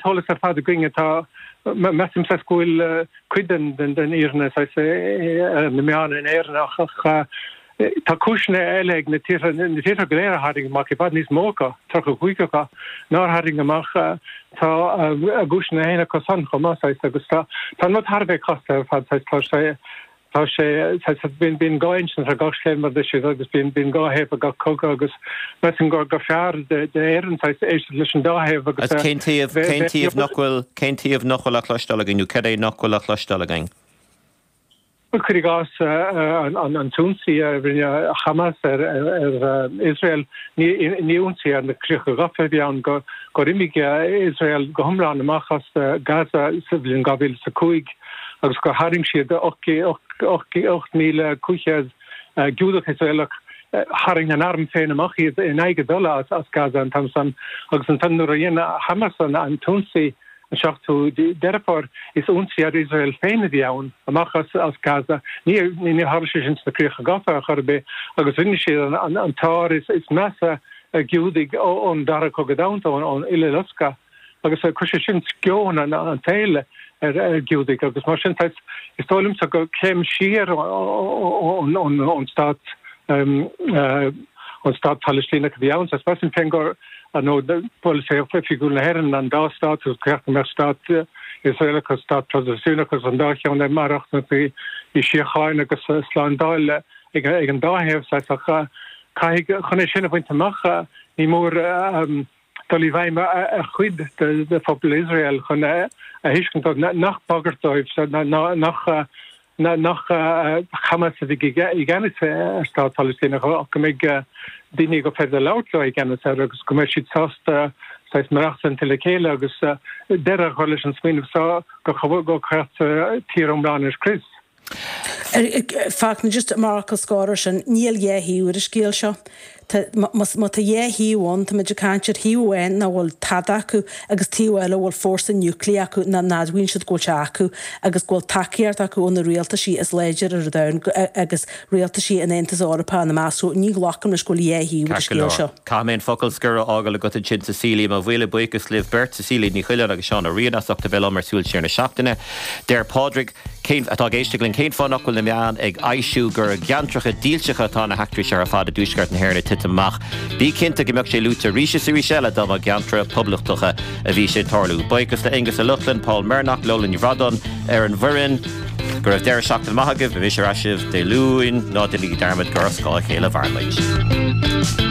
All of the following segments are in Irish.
Solas ar fad againne, tá, measaim saghas go bhfuil cuid den den fhírinne saghas na meáin in Éirinn ach tá cúiseanna eile ag na tíortha, na tíortha go léir a tharraing amach i bhfad níos mó acu, 35 acu, nár tharraing amach. Tá a gcúiseanna féin acu san chomh maith saghas agus tá an rud thar a bheith casta ar fad saghas tá sé, Tá sé, bíonn dhá insint ar gach scéal mar a deir sí agus bíonn dhá thaobh ar gach cogadh agus measaim gur fearr d'Éirinn éisteacht leis an dá thaobh agus a bheith. Cén taobh nach bhfuil á chloisteáil againn nó cad é nach bhfuil á chloisteáil againn? Bhuel, cuir i gcás an t-ionsaí a rinne Hamas ar Iosrael, ní ionsaí ar na críocha gafa a bhí ann, gur imigh Iosrael go hiomlán amach as Gaza sa bhliain 2005, agus gur tharraing siad 8,500 Giúdach Iosraelach, tharraing an arm féin amach iad in aghaidh a dtola as Gaza an t-am san, agus ansan nuair a dhein Hamas an t-ionsaí an 7ú Deireadh Fómhair, is ionsaí ar Iosrael féin a bhí ann, amach as Gaza. Níor tharla sé sin sna Críocha Gafa ar chor ar bith, agus rinne siad an t-ár is measa ar Ghiúdaigh ón Dara Cogadh Domhanda, ón Uileloscadh. agus chuir sé sin sceon an tsaoil ar Ghiúdaigh agus mar sin is dóigh liomsa gur céim siar ón stát an stát Palaistíneach a bhí ann. Is mar sin féin gurb é polasaí oifigiúil na hÉireann an dá stát agus go mbeadh stát Iosraelach agus stát Palaistíneach agus an dá cheann ag maireachtaint i síocháin agus slándáil ag an dá thaobh. Caithfidh chun é sin a bhaint amach ní mór dul i bhfeidhm ar chuid de phobal Iosrael chun a thuiscint dóibh nach bagairt dóibh ná nach Hamas a bheidh i gceannas ar stát Palaistíneach ach go mbeidh daoine gur féidir labhairt leo i gceannas air agus go mbeidh siad sásta saghas maireachtaint le chéile agus deireadh a chur leis an smaoineamh seo gur cheart tír iomlán a scrios. fact, just mar fhocal scoir ar sin, níl dhá thaobh ar an scéal seo. Tá, más, má tá dhá thaobh ann, táimid ag caint ar thaobh amháin nach bhfuil tada acu agus taobh eile a bhfuil fórsa núiclí acu nach n-admhaíonn siad go bhfuil sé acu agus go bhfuil tacaíocht acu ó na rialtaisí is láidre ar an domhan agus rialtaisí an Aontais Eorpaigh ina measc. So, ní ghlacaim leis go bhfuil dhá thaobh ar an scéal seo. Caithfidh mé an focal scoir a fhágáil agat ansin Cecilia, mo mhíle buíochas libh beirt, Cecilia Ní Choileáin agus Seán Ó Riain as ucht a bheith liom ar Súil Siar na Seachtaine. Deir Pádraig. Cén, atá ag éisteacht linn, cén fáth nach bhfuil na meáin ag foilsiú gur i gceantracha dílseacha atá na heachtraí seo ar fad i dtuaisceart na hÉireann ag titim amach? Bí cinnte go mbeadh sé luaite arís is arís eile dá mba i gceantracha poblachtacha a bhí sé ag tarlú. Buíochas le Aonghus Ó Lochlainn, Paul Mernagh, Lola Ní Bhrádáin ar an bhfoireann. Go raibh deireadh seachtaine maith agaibh, beidh mise ar ais libh Dé Luain, ná déanaigí dearmad gur ar scáth a chéile a mhairimid.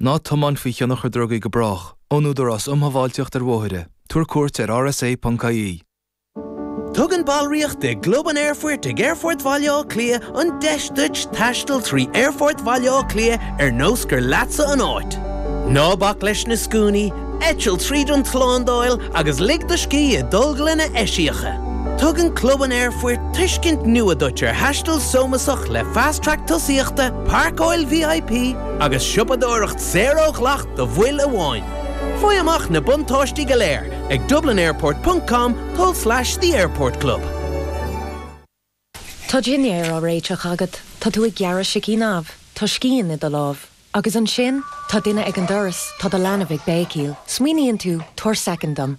Ná tiomáin faoi thionchar drugaí go brách. Ón Údarás um Shábháilteacht ar Bhóithre. Tabhair cuairt ar rsa ponc ie. Tugann ballraíocht i gClub an Aerfoirt ag Aerfort Bhaile Átha Cliath an deis duit taisteal trí Aerfort Bhaile Átha Cliath ar nós gur leatsa an áit. Ná bac leis na scuainí, eitil tríd an tslándáil agus lig do scíth i dtolglanna eisiacha. Tugann Club an Aerfoirt tuiscint nua duit ar thaisteal sómasach le Fast Track tosaíochta, páirceáil VIP, agus siopadóireacht saor ó dhleacht do bhaill amháin. Faigh amach na buntáistí go léir ag dublinairport ponc com tulslais the airport club. Tá dinnéar á réiteach agat, tá tú ag gearradh sicín amh, tá scian i do lámh. Agus ansin, tá duine ag an doras, tá do leanbh ag béicíl. Smaoiníonn tú, 'Tabhair soicind dom.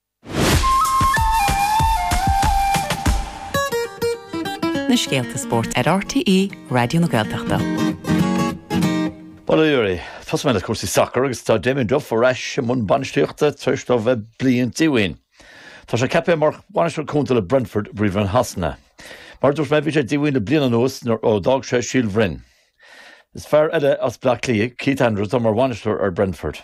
na scéalta spóirt ar RTÉ Raidió na Gaeltachta. Bail oraibh, tosóidh mé le cúrsaí sacair agus tá Damien Duff ar ais i mbun bainistíochta tar éis dó bheith bliain díomhaoin. Tá sé ceaptha mar bhainisteoir cúnta le Brentford, i bPríomhroinn Shasana. Mar a dúirt mé, bhí sé díomhaoin le bliain anuas nuair a d'fhág sé Síol Broin. Is fear eile as Bleá Cliath, Keith Andrews, atá mar bhainisteoir ar Brentford.